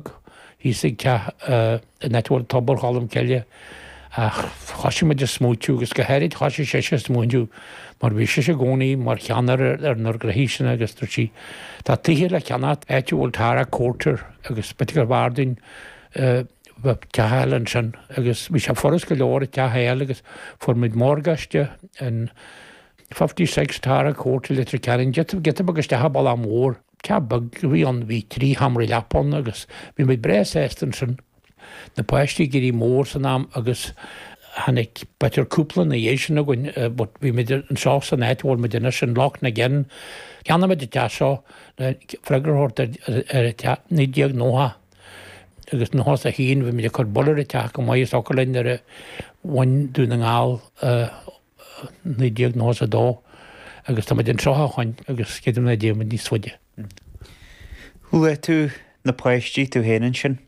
Bheag, thíos ag teach an áit a bhfuil tobar Cholm Cille, ach thoisigh muid a smaoitiú, agus go háirid thoisigh sise a smaoitiú, mar bhí sise i gcónaí mar cheannaire ar na gnoithe seo, agus dúirt sí, Tá tithe le ceannacht san áit a bhfuil Tara Court ar, agus b'fhéidir gurbh fhearr duinn teach a fháil ansin, agus bhí sé furast go leor teach a fháil, agus fuair muid morgáiste in Fifty Six Tara Court ar, Leitir Ceanainn, giota beag isteach an bealach mór. Teach beag a bhí ann, bhí trí sheomra leapa ann agus bhí muid breá sásta ansin. Na páistí ag éirí mór san am agus tháinig beirt cúpla ina dhiaidh sin againn but bhí muid anseo san áit a bhfuil muid anois in Loch na gCeann. Cheannaigh muid an teach seo le freagra a thabhairt ort i 1990 agus in nócha is a haon bhí muid ag cur bail ar an teach go maith agus a thiocfadh linn nuair a bhain Dún na nGall a 1992 agus táimid anseo ó shin agus creidim nach dtéann muid níos faide. Luaigh tú na páistí, tú féin ansin.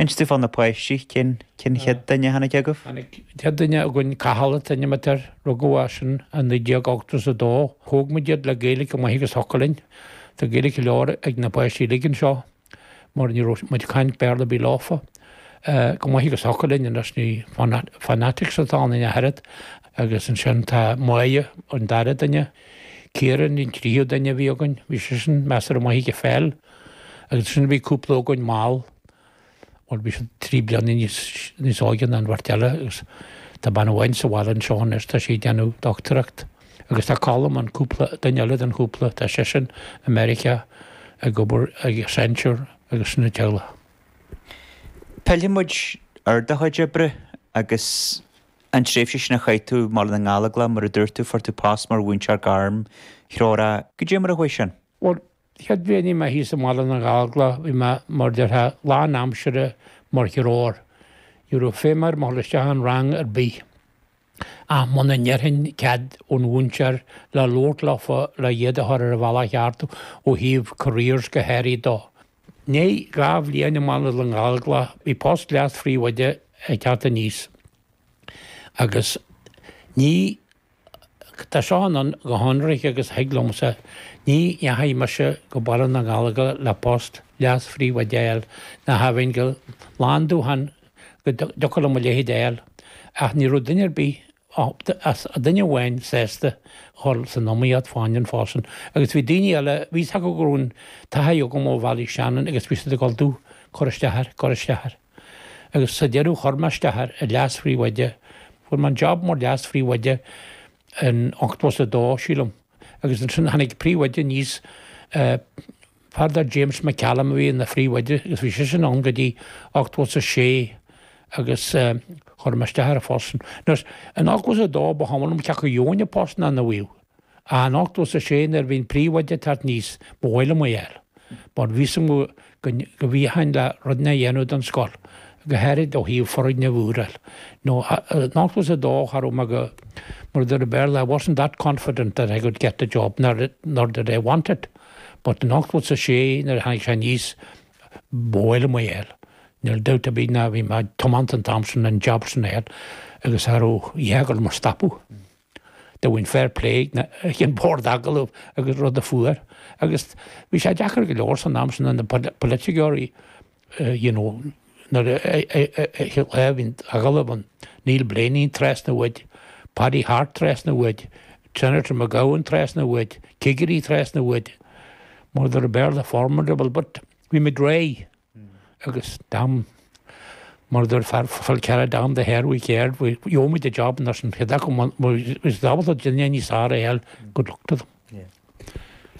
Inis dúinn fá na páistí, cén chéad duine a tháinig chugaibh? An chéad duine againn, Cathal an t-ainm atá air, rugadh eisean i 1982. Thóg muid iad le Gaeilge chomh maith agus a thiocfadh linn. Tá Gaeilge go leor ag na páistí uilig anseo. mar ní raibh muid ag caint Béarla ar bith leofa, chomh maith agus a thiocfadh linn anois ní fanatics atá ionainn a dhath agus ansin tá Moya an dara duine, Ciaran an tríú duine a bhí againn, bhí seisean measartha maith ag an pheil agus ansin bhí cúpla againn mall mar bhí siad trí bliana níos óige ná an bheirt eile agus tá bean acu sa bhaile anseo anois tá sí ag déanamh dochtúireacht Agus tá Colm, an cúpla, duine eile den chúpla, tá seisean i Meiriceá ag obair ag Accenture agus sin an teaghlach. Pillfidh muid ar do chuid oibre agus an tréimhse sin a chaith tú i mBaile na nGallóglach, mar a dúirt tú, fuair tú post mar mhúinteoir gairmthreorach. Cad é mar a chuaigh sin? Bhuel, chéad bhliain a bhí mé thíos i mBaile na nGallóglach, bhí mé, mar a déarfá, lán aimsire mar ghairmthreoir. Ní raibh feidhm orm a ghabháil isteach i rang ar bith. Ach muna n-iarrfainn cead ón mhúinteoir le labhairt leofa le iad a chur ar an bhealach cheart ó thaobh careers go háirithe de, i ndiaidh dhá bhliain i mBaile na nGallóglach, bhí post leas-phríomhoide ag teacht aníos. Agus ní, tá seo ann go hionraic agus a thig liomsa, ní dheachaigh mise go Baile na nGallóglach le post leas-phríomhoide a fháil, ní raibh aon cineál dúil go dtiocfadh liom a leithéid a fháil, ach ní raibh duine ar bith, ach duine amháin, sásta cur san iomaíocht fán phost sin. Agus bhí daoine eile, bhí fhios acu go raibh an taithí agam ó Bhéal Átha Seanaidh agus bhí siad ag gabháil domh, cuir isteach air, cuir isteach air. Agus sa deireadh chuir mé isteach ar an leas-phríomhoide, fuair mé an jab mar leas-phríomhoide in ochtó is a dó, sílim, agus ansin tháinig príomhoide aníos Fear dar James McCallum a bhí ina phríomhoide agus bhí seisean ann go dtí ochtmhó is a sé agus chuir mé isteach ar an phost sin. Anois, in ochtmhó is a dó ba chuma liom cé acu gheobhainn an post nó nach bhfaighinn ach in ochtmhó is a sé nuair a bhí an príomhoide ag teacht aníos ba mhaith liom é a fháil mar bhí 'fhios agam go bhféadfainn le rudaí a dhéanamh don scoil go háirid ó thaobh foirgneamh úr a fháil nó in ochtmhó is a dó cha raibh mé go mar a deir an Béarla I wasn't that confident that I could get the job nor did I want it. but in ochtmhó is a sé nuair a tháinig sé aníos ba mhaith liom é a fháil, níl dabht ar bith ná bhí mé tiomanta an t-am sin an jab sin a fháil agus cha raibh a dhath ag gabháil mo stopadh dá bhfaighinn fair play ag an bhord agallamh agus rud a fuair agus bhí sé deacair go leor san am sin na poiliticeoirí, you know nuair a bhíonn agallamh ann Neil Blaney trasna uait, Paddy Harte trasna uait, Senator McGowan trasna uait, cigirí trasna uait, mar a deir an Béarla formidable but bhí muid réidh agus damn mar a deir fear eile cead damn the hair we cared, gheobhaimid an job nós iad acu, is ábalta duine níos fearr a fháil, good luck to them.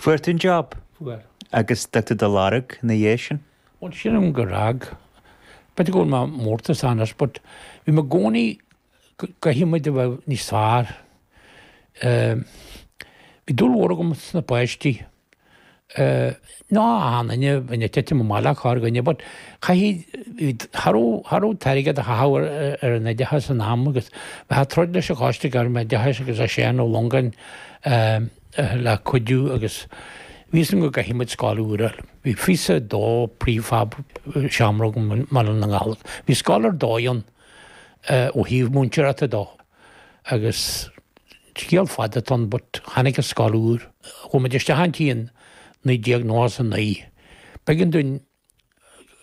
Fuair tú an job? Fuair. Agus d'fhág tú do lorg ina dhiaidh sin? Bhuel, sílim gur fhág. B'fhéidir go bhfuil mé mórtasach as but bhí mé i gcónaí, caithfidh muid a bheith níos fearr. Bhí dúil mhór agam sna páistí. nó achan nduine bhínn ag titim amach le corrdhuine but chaithfidh cha raibh cha raibh an t-airgead á chaitheamh ar an oideachas san am agus bheifeá ag troid leis an Choiste Gairmoideachais agus le Seán Ó Longáin le cuidiú agus bhí 'fhios agam go gcaithfeadh muid scoil úr a fháil bhí píosa de prefab seanrud i mBaile na nGallóglach bhí scoil ar dóigh ann ó thaobh múinteoireachta de. agus scéal fada atá ann but tháinig an scoil úr. Chuaigh muid isteach inti in 1999. B'éigean dúinn